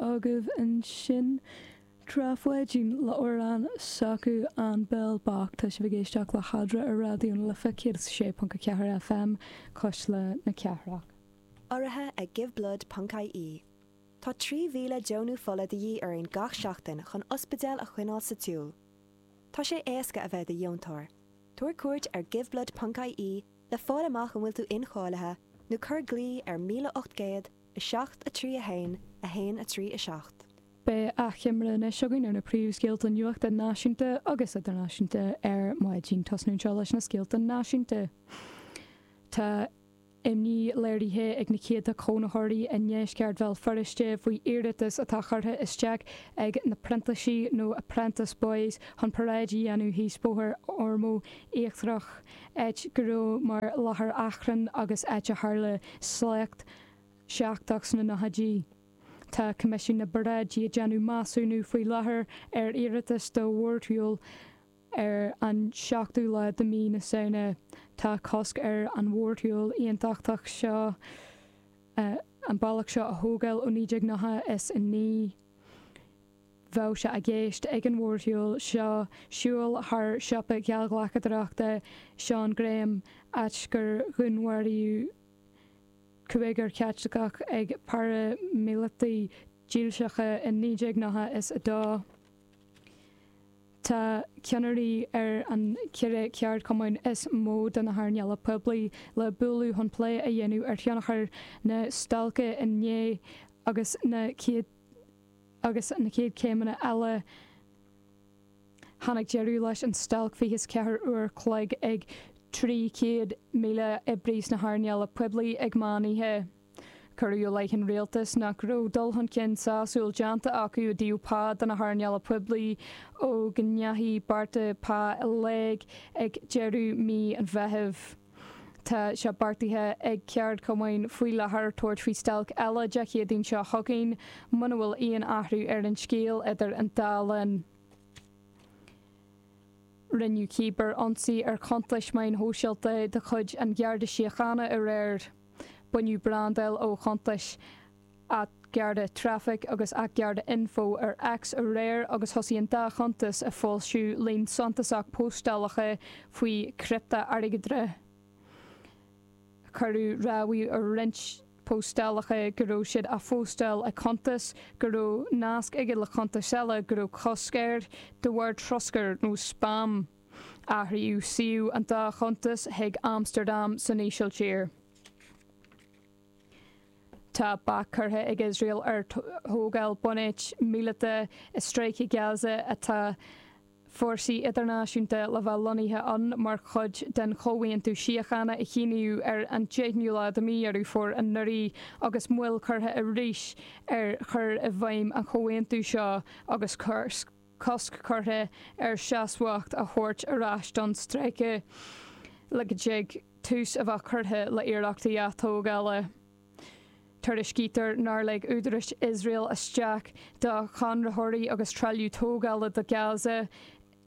agaibh ansin Trá Pháidín le amhrán s'acu An Béal Bocht. Tá sibh ag éisteacht le hEadra ar Raidió na Life 106.4 FM, Cuisle na Cathrach. Urraithe ag Giveblood ponc ie Tá 3,000 deonú fola de dhíth orainn gach seachtain chun ospidéal a choinneáil sa tsiúl. Tá sé éasca a bheith i do dheontóir. Tabhair cuairt ar Giveblood ponc ie le fáil amach an bhfuil tú incháilithe nó cuir glao ar 1800 7, 3, 1, 1, 3, 7. Beidh achoimre anois againn ar na príomhscéalta nuachta náisiúnta agus idirnáisiúnta ar maidin. Tosnú anseo leis na scéalta náisiúnta. Tá imní léirithe ag na céadta cónaitheoirí i ndeisceart Bhéal Feirste faoi iarratas atá curtha isteach ag na Printísigh nó Apprentice Boys chun paráid a dhéanamh thíos Bóthar Ormeau Íochtarach, áit go raibh mar láthair achrainn agus áit a tharla sléacht. seicteach sna nóchaidí. Tá Coimisiún na bParáidí ag déanamh measúnú faoi láthair ar iarratas do mhórshiúl ar an seachtú lá de mhí na Samhna. Tá cosc ar an mhórshiúl aontachtach seo an bealach seo a thógáil ó 1999. Bheadh sé i gceist ag an mhórshiúl seo siúl thar siopa gheallghlacadóireachta Seán Graham, áit gur dhúnmharaíodh. cúigear Caitliceach ag paraimíleataigh dhílseacha i 1992. Tá ceannairí ar an cheithre cheardchumann is mó de na hearnála poiblí le bualadh chun plé a dhéanamh ar thionchar na stailce inné agus na chéad céimeanna eile. Tháinig deireadh leis an stailc fiche is ceathair uair a chloig ag 300,000 oibrí sna hearnála poiblí ag meán oíche. Cuireadh i leith an rialtais nach raibh dul chun cinn sásúil déanta acu i dtaobh pá do na hearnála poiblí ó go ndeachaigh bearta pá i léig ag deireadh mhí an Mheithimh. Tá sé beartaithe ag ceardchumainn faoi láthair tabhairt faoi stailc eile Dé Céadaoin seo chugainn muna bhfuil aon athrú ar an scéal idir an dá linn. Rinneadh cibearionsaí ar chuntais meáin shóisialta de chuid an Gharda Síochána aréir. Baineadh brandáil ó chuntais. at Garda Traffic agus at Garda Info ar X aréir agus thosaigh an dá chuntas ag foilsiú líon suntasach póstálacha faoi criptea-airgeadra. Cuireadh rabhadh ar roinnt póstálacha go raibh siad á phóstáil ag cuntas go raibh nasc aige le cuntas eile go raibh cosc air de bharr troscair nó spam. Athraíodh suíomh an dá chuntas chuig Amstardam san Ísiltír. Tá bac curtha ag Iosrael ar thógáil bunáit míleata i Stráice Gaza atá fórsaí idirnáisiúnta le bheith lonnaithe ann mar chuid den chomhaontú síochána a shíníodh ar an deichiú lá de mhí Dheireadh Fómhair anuraidh agus moill curtha arís ar chur i bhfeidhm an chomhaontaithe seo agus cur cosc curtha ar seasmhacht a thabhairt ar ais don stráice le go dtig tús a bheith curtha le hiarrachtaí atógála. Tuairiscítear nár lig údarais Iosrael isteach do chonraitheoirí agus trealamh tógála do Gaza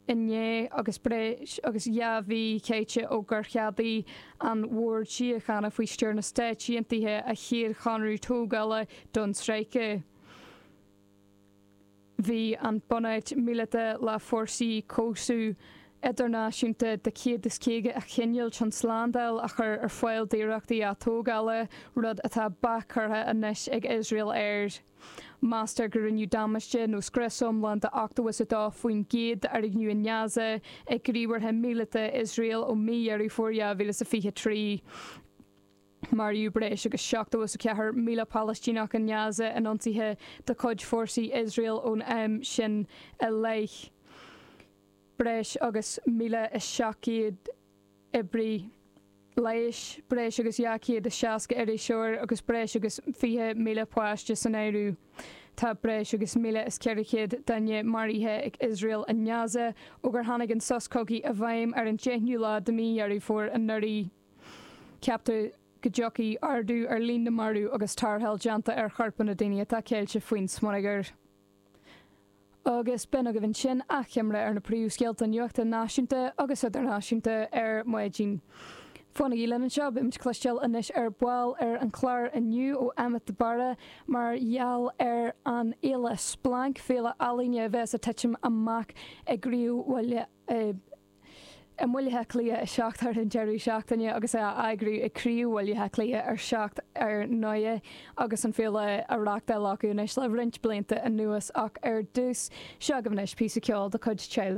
inné agus breis agus dhá mhí caite ó gur cheadaigh an Bord Síochána faoi stiúir na Stát Aontaithe a chéad chonradh tógála don stráice. Bhí an bhunáit míleata le fórsa cobhsaithe idirnáisiúnta de 150 a choinneáil chun slándáil a chur ar fáil d'iarrachtaí atógála, rud atá bac curtha anois ag Iosrael air. Meastar go rinneadh damáiste nó scrios iomlán de 82% d'fhoirgnimh in Gaza ag gníomhartha míleata Iosrael ó mhí Dheireadh Fómhair 2023. Maraíodh breis agus 74,000 Palaistíneach in Gaza in ionsaithe de chuid fórsaí Iosrael ón am sin i leith, breis agus 1,700 oibrí leighis, breis agus 260 iriseoir agus breis agus 20,000 páiste san áireamh. Tá breis agus 1,400 duine maraithe ag Iosrael i nGaza ó gur tháinig an sos cogaidh i bhfeidhm ar an 10ú lá de Mhí Dheireadh Fómhair anuraidh. Ceaptar go dtiocfaidh ardú ar líon na marbh agus tarrtháil déanta ar choirp na ndaoine atá ceilte faoin smionagar. Agus b'in agaibh ansin achoimre ar na príomhscéalta nuachta náisiúnta agus idirnáisiúnta ar maidin. Fanaigí linn anseo, beimid ag cloisteáil anois ar ball ar an chlár inniu ó Emmet de Barra mar gheall ar an fhéile Splanc, féile ealaíne a bheas ag titim amach i gcroílbhaile. i mBaile Átha Cliath 7 thar an deireadh seachtaine agus é á eagrú ag Craobh Bhaile Átha Cliath ar 7 ar ndóigh agus an fhéile á reachtáil acu anois le roinnt blianta anuas ach ar dtús seo agaibh anois píosa ceoil de chuid Child